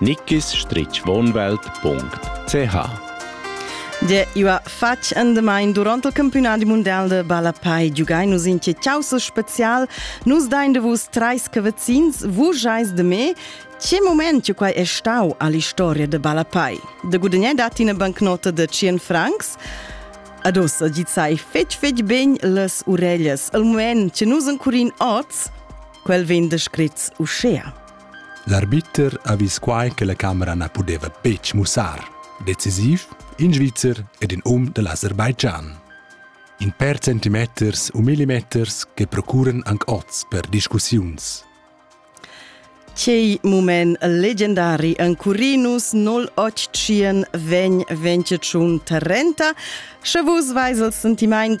nickisstritschwohnwelt.ch De ua fatg endemain durant il campiunadi mundial de ballapai giugai nus in ciausa special nus dain de vus treis cavazzins vus eis de me che moment che quai è stau all'historia de ballapai de gudagnai dat ina bancnota de 100 francs Adossa gi sai fetg fetg ben las urellas il moment che nus encurin oz quel vegn descrit uschea L'arbiter ha vis quai che la camera na pudeva betg mussar, decisiv, in Svizzer ed in um da l'Aserbaidschan. In per centimeters u millimeters che procuran anc oz per discussiuns. Quei mument legendari en Curinus 081 vegn 23 Trenta, sche vus veis il sentiment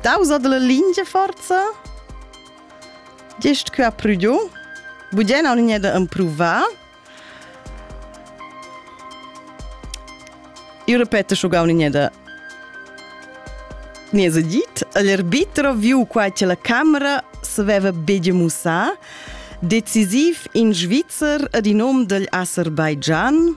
Tausa della lingia forza? Gest que ha prudio. Bugen ho niente improvà. Io ripeto schon gar niente niese dit, l'arbitro viu qua che la camera s'aveva beige mussà, decisiv in Svizzer ad in hom degl Aserbaidschan,